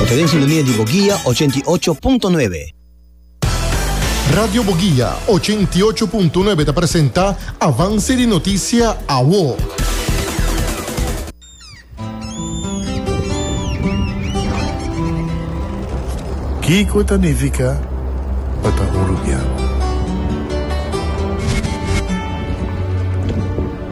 Ta den sintonia di Boguia ochenta i ocho punto nuebe. Radio Boguia ochenta i ocho punto nuebe ta presenta Avance di Noticia Awo. Kiko ta nifica pa ta uruguiano?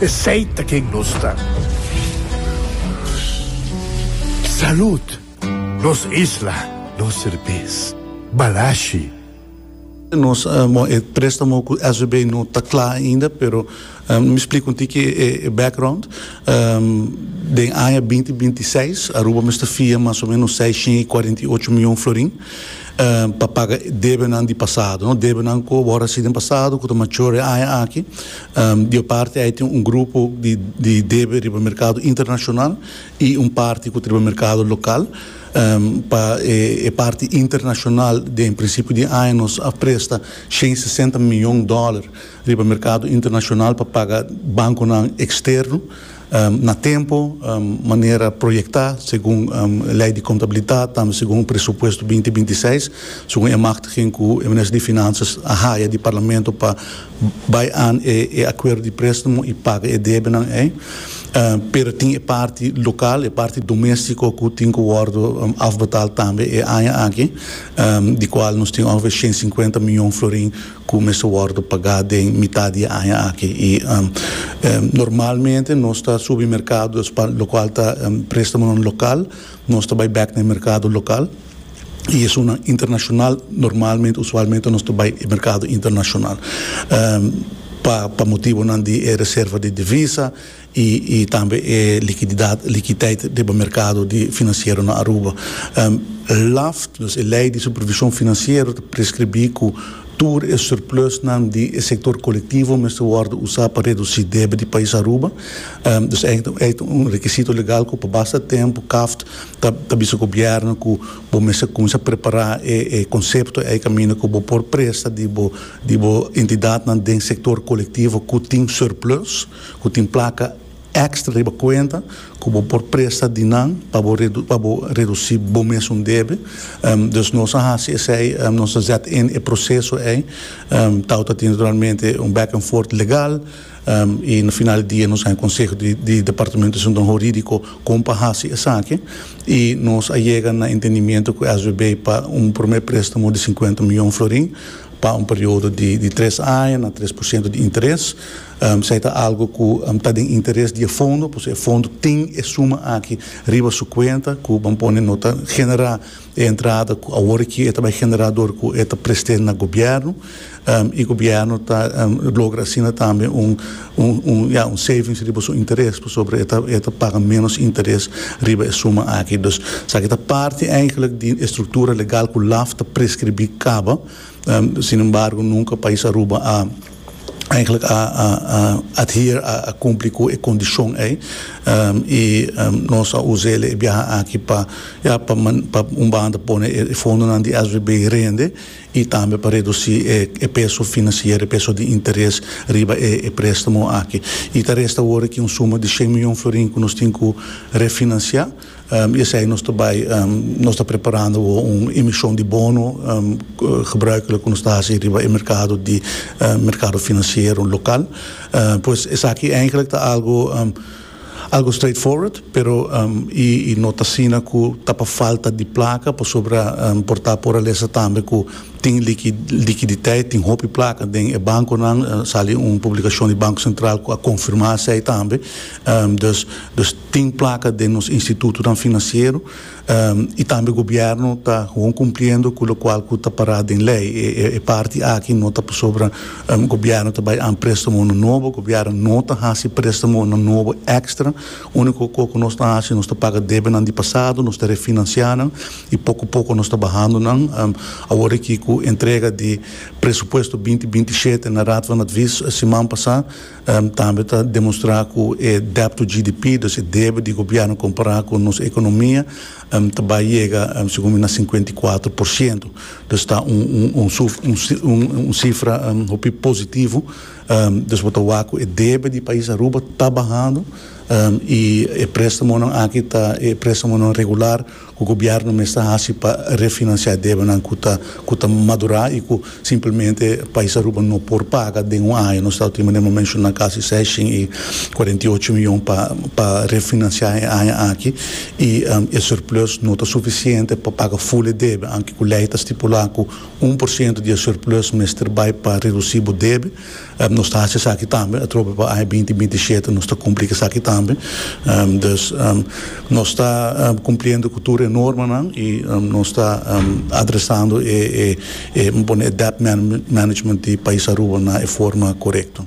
Esey ta ken nos ta. Salud! Nos isla, nos serbes. Balashi. Nos bon e prestamo cu SVB no ta cla ainda pero mi splica un tiki e background. Den aña binti binti i seis Aruba mester fia mas o menos seiscientos i cuarenta i ocho mion florin pa paga debenan di pasado, debenan cu a wor haci den pasado cu ta mature aña aki. Di e parti ei tin un grupo di debe riba merkado internashonal i un parti ku ta riba merkado lokal. Pa e parti internashonal den prinsipio di e aña nos a presta shen sesenta miyon dòler riba merkado internashonal pa paga bankonan eksterno. na tempo, manera proyecta segun Ley di Contabilidad, tambe segun Presupuesto binti binti seis, segun e machtiging cu e Minister di Finanzas a haya di Parlamento pa bay aan e acuerdo di prestamo y paga e debenan ey, pero tin e parti local, e parti domestico cu tin cu wordo afbetal tambe e aña aki, di cual nos tin ongeveer ciento cincuenta miyon florin. cu mester wordo pagá den mitad di e aña aki y normalmente nos ta subi mercado locual ta prestamonan local, nos ta bay bek na e mercado local y esunnan internacional normalmente, usualmente, nos ta bay e mercado internacional pa motibonan di e reserva di divisa. y tambe e likididad, likiteit, riba merkado di finansiero na Aruba. LAFT, nos e Lei di Supervishon Finansiero, ta preskribí ku tur e surplusnan di e sektor kolektivo mester wòrdu usá pa redusí debe di pais Aruba. Dus ei ei ta un rekisito legal ku pa basta tempu KAFT ta ta bisa gobièrnu ku bo mester kuminsá prepará e e konsepto ei kaminda ku bo por presta di bo di bo entidatnan den sektor kolektivo ku tin surplus. ku tin plaka èkstra riba kuenta ku bo por presta di nan pa bo pa bo redusí bo mes un debe. Dus nos a hasi esei, nos a zet in e proseso ei. Tao ta tin naturalmente un back and forth legal i na final di dia nos a haña konseho di di departamento di asuntonan hurídiko kon pa hasi esaki i nos a yega na entendimiento ku SBB pa un promé préstamo di sinkuenta mion florin pa un periodo di di tres aña na tres por siento di interes. Esei ta algu ku ta den interes di e fondo, p'esei e fondo tin e suma aki riba su kuenta ku ban pone no ta generá e entrada ku awor aki e ta bai generá dor ku e ta prest'é na gobièrnu i gobièrnu ta logra asina tambe un un ya un savings riba su interes pasobra e ta e ta paga ménos interes riba e suma aki. Dus esaki ta parti eigenlik di e struktura legal ku laf ta preskribí kaba, sinembargo nunka Pais Aruba a. Eigenlijk a adhere, a cumpli cu e condicion ey y nos a uza el'e e biaha aki pa ya pa pa un banda pone e fondonan di SBB rende y tambe pa reduci e peso financiero, e peso di interes riba e prestamo aki. Y ta resta awor aki un suma di cien miljon florin cu nos tin cu refinancia. I esei nos ta bai nos ta preparando bo un emishon di bono gebruik loke nos ta hasi riba e merkado di merkado finansiero lokal. Pues esaki eigenlik ta algu algu straight forward pero i i no ta asina ku ta pa falta di plaka pasobra por ta poralesa tambe ku tin liki likiditeit tin hopi plaka den e bankonan a sali un publikashon di Banko Sentral ku a konfirmá esei tambe dus dus. Tin plaka den nos institutonan financiero y tambe gobierno ta gewoon cumpliendo cu locual cu ta para den ley. E parti aki no ta pasobra gobierno ta bay an prestamonan nobo. Gobierno no ta haci prestamonan nobo extra. Unico co cu nos ta haci nos ta paga debenan di pasado, nos ta refinancia nan y poco poco nos ta bahando nan. Awor aki cu entrega di presupuesto binti binti shete na Raad van Advies siman pasa, Tambe ta demostrá ku e dèbt to GDP, dus e debe di gobièrnu kompará ku nos ekonomia, ta bai yega, segun mi, na sinkuenta i kuater por siento. Dus ta un sifra hopi positivo. Dus bo ta wak ku e debe di pais Aruba ta bahando i e préstamonan aki ta e préstamonan regular Cu gobierno mes ta haci pa refinancia debanan cu ta cu ta madura y cu simplemente pais Aruba no por paga den un aña? Nos ta op tin manera mi a menciona casi seshin y cuarenta y ocho miyon pa pa refinancia e aña aki y e surplus no ta suficiente pa paga full e debe aunke cu ley ta stipula cu un por ciento di e surplus mester bay pa reduci bo debe. Nos ta hasi esaki tambe atrobe pa aña binti binti i shete nos ta kumpli ku esaki tambe. Dus nos ta kumpliendo ku tur e normanan i nos ta adresando e mi pone e debt management di pais Aruba na e forma korekto.